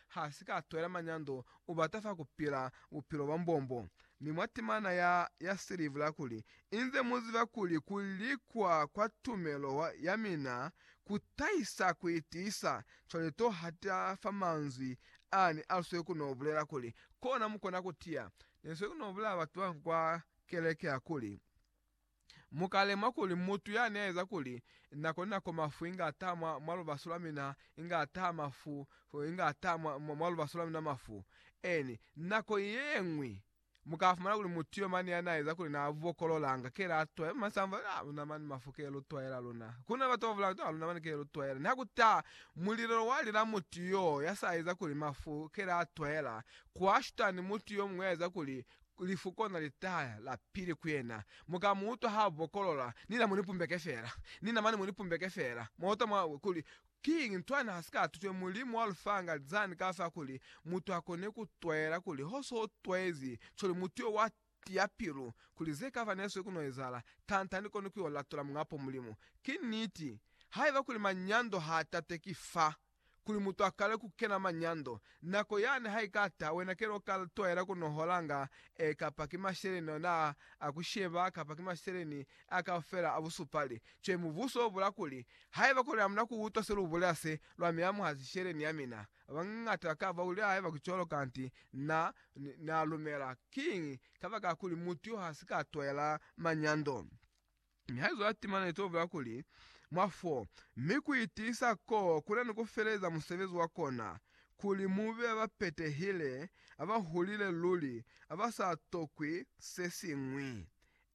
ha si ka twela manyando, u bata fa ku pila bupilo bwa mbombo. Mi mwa timana ya, ya silivu la kuli, Inze mu ziba kuli ku likwa kwa tumelo ya mina ku tahisa ku itiisa, cwale to hata fa manzwi ani a lswe ku no bulela kuli, Kona mu kona ku tiya. Ne lswe ku no bulela batu ba kwa keleke hakuli, Mu ka lemuha kuli mutu yani a eza kuli nako ni nako mafu inga a taha mwa, mwa lubaso lwa mina, inga a taha mafu, inga a taha mwa, mwa lubaso lwa mina mafu. Eeni, nako yeñwi mu ka fumana kuli mutu yo mane yani a eza kuli na bokolola, nga kela a twaela, mane sa mu fa, Ah, luna mane mafu kela lu twaela luna. Ku na ni batu ba bulanga kuti, Ah, luna mane kela lu twaela. Niha ku taha mulilelo wa lila mutu yoo ya sa eza kuli mafu kela a twaela, kwa shuta ni mutu yo muñwi ya eza kuli Lifu kona litaya la pili ku yena. Mu ka mu utwa ha bokolola, Nina mu ni pumbeke fela. Nina mane mu ni pumbeke fela. Mwa utwa mwa we kuli, Kiñi? Ntwani ha si ka tutwe? Mulimu wa lu fanga zani ka fa kuli mutu a kone ku twela kuli ho so twezi cwale mutu yo wa tiya pilu, kuli ze ka fa ne swe ku no ezahala, tanta ni koni ku yo latola Muñ'a po Mulimu? Ki niti, haiba kuli manyando ha tatwe ki fa kuli mutu akale ku kena manyando. Nako yani ha ika ta, wena ke lo ka twaela ku noholanga e kapa ki masheleni ona a ku sheba kapa ki masheleni a kaufela a busupali. Cwale mubuso o bula kuli, Haiba kuli amuna ku utwa se lu bulela se, lwa mi amuha sisheleni ya mina. Babañata ba ka ba bulela haiba ki cwalo kanti na, na lumela. Kiñi? Kabakakuli mutu yo ha si ka twaela manyando. Mi haizo ya tima ne to bula kuli mwa fo, mi ku itiisa ko kuna ni ku feleza musebezi wa kona, kuli mu be ba petehile, aba hulile luli, aba sa tokwi se siñwi.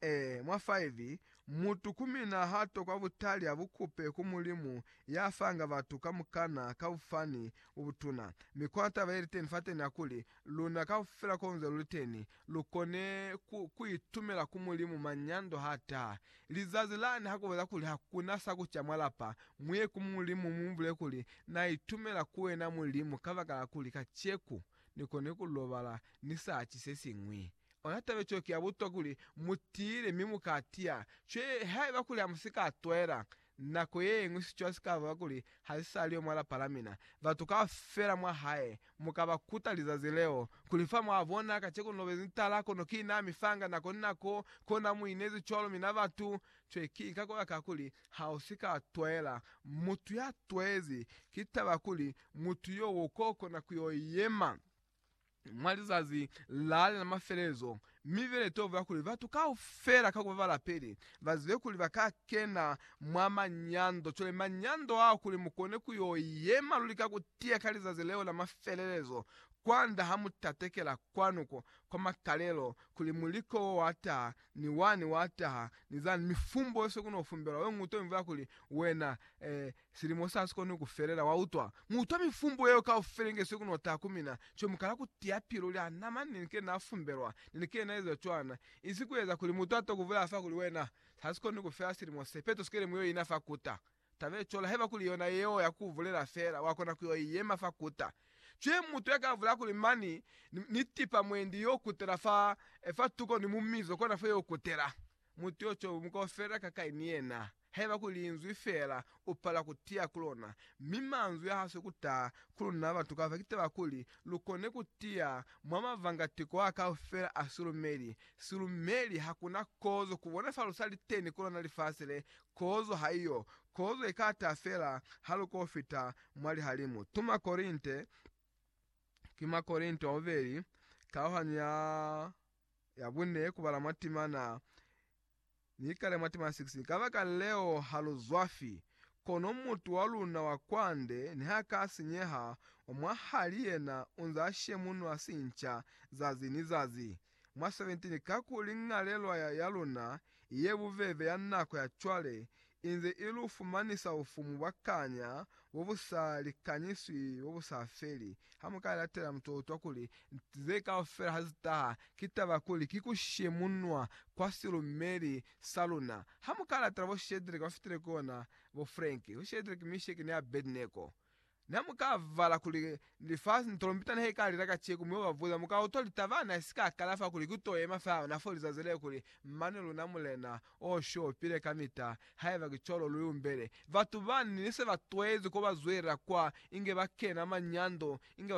E, mwa 5, Mutu ku mina ha tokwa butali a bu kupe ku Mulimu ya fanga batu kamukana ka bufani bo butuna. Mi kona taba ye li teni fateni ya kuli, Luna kaufela konze luliteni, lukone ku, kuitumela ku Mulimu manyando hataha. Lizazi lani hakubolela kuli hakuna sakuca mwa lapa, muye ku Mulimu mumubulele kuli, Naitumela ku wena Mulimu kabakala kuli kaceku nikone kulobala nisaci sesiñwi. Ona taba cwale ki yabutokwa kuli mutiile mi mukatiya. Cwale haiba kuli hamusika twaela, Nako yeñwi sicwa sikaba kuli hasisali yo mwa lapa lamina. Batu kaufela mwahae mukaba kuta lizazi leo, kuli, Fa mwabona, kaceko nilobezi ni tala, kono ki na mi fanga nako ni nako, kona muinezi cwalo. Mina batu, cwe ki ka kola ka kuli, hausika twaela mutu ya twezi. Ki taba kuli, mutu yo uko kona kuyo yema. Mwa lizazi lale la mafelelezo, mi bile tobo ya kuli batu kaufela ka kuba balapeli ba zibe kuli ba ka kena mwa manyando. Cwale manyando ao, kuli mu kone ku yo yema luli ka ku tiya ka lizazi leo la mafelelezo, kwand'a ha mu tatekela kwanu ko kwa makalelo, kuli muliko wo wa taha, ni wani wa taha, ni zani, mifumbo yose ku no fumbelwa, we ng'uto imvwa ya kuli, Wena, eh, Silimo sa si koni ku felela, wa utwa. Mu utwa mifumbo yeo kaufela inge se ku no taha ku mina. Cwale mu kala ku tiya pilu lya na mani nili ke na fumbelwa, nili ke na ezwa cwana. Insi ku eza kuli mutu a to ku bulela fa kuli, Wena, sa si koni ku fela silimo se, peto sikele mu yo ina fa kuta. Taba ye cwalo, haiba kuli yona yeo ya ku bulela fela, wa kona ku yo i yema fa kuta. Cwale mutu ya ka bulela kuli, Mani, ni, ni tipa mwendi yo kutela fa, fa tuko ni mu mizo kona fa yo kutela. Mutu yo cwale mu ka felela kakai ni yena? Haiba ku linzwi feela, u pala ku tiya ku lona, mi manzwi a haswe ku taha ku luna batu kafela ki taba kuli lu kone ku tiya mwa mavanga tiko a kaufela a silumeli. Silumeli, hakuna kozo ku bona fa lu sa li teni ku lona lifasi le. Kozo haiyo. Kozo i ka taha feela ha lu ko fita mwa lihalimu. Tu mwa Korinte, ki mwa Korinte wa bubeli, kauhanyo ya, ya bune, ku bala mwa timana. Ni kale mwa tema 6, Kabakaleo ha lu zwafi, kono mutu wa luna wa kwande niha ka sinyeha, wa mwahali yena u nz'a shemunwa sinca zazi ni zazi. Mwa 17, Kakuli ñalelwa ya luna i ye bubebe ya nako ya cwale inze i lu fumanisa bufumu bwa kanya bo bu sa likanyiswi bo bu sa feli. Ha mu ka latela mutotwa kuli ze kaufela ha zi taha, ki taba kuli ki ku shemunwa kwa silumeli sa luna. Ha mu ka latela bo Shedreke ba fitile kona bo Frank, bo Shedreke, Misheke ni Abednego, Na mu ka vala kuli lifasi ni tolompita ne ka lila kaciko, mi uba buza, mu ka utwa litaba na si ka kala fa kuli ki to yema fa yona fo lizazi leo kuli, Mane luna Mulena, o shopile kamita, haiba ki cwalo lu yumbele. Batu bani ne se ba twezi ko ba zwelela kwa, inge ba kena manyando, inge ba.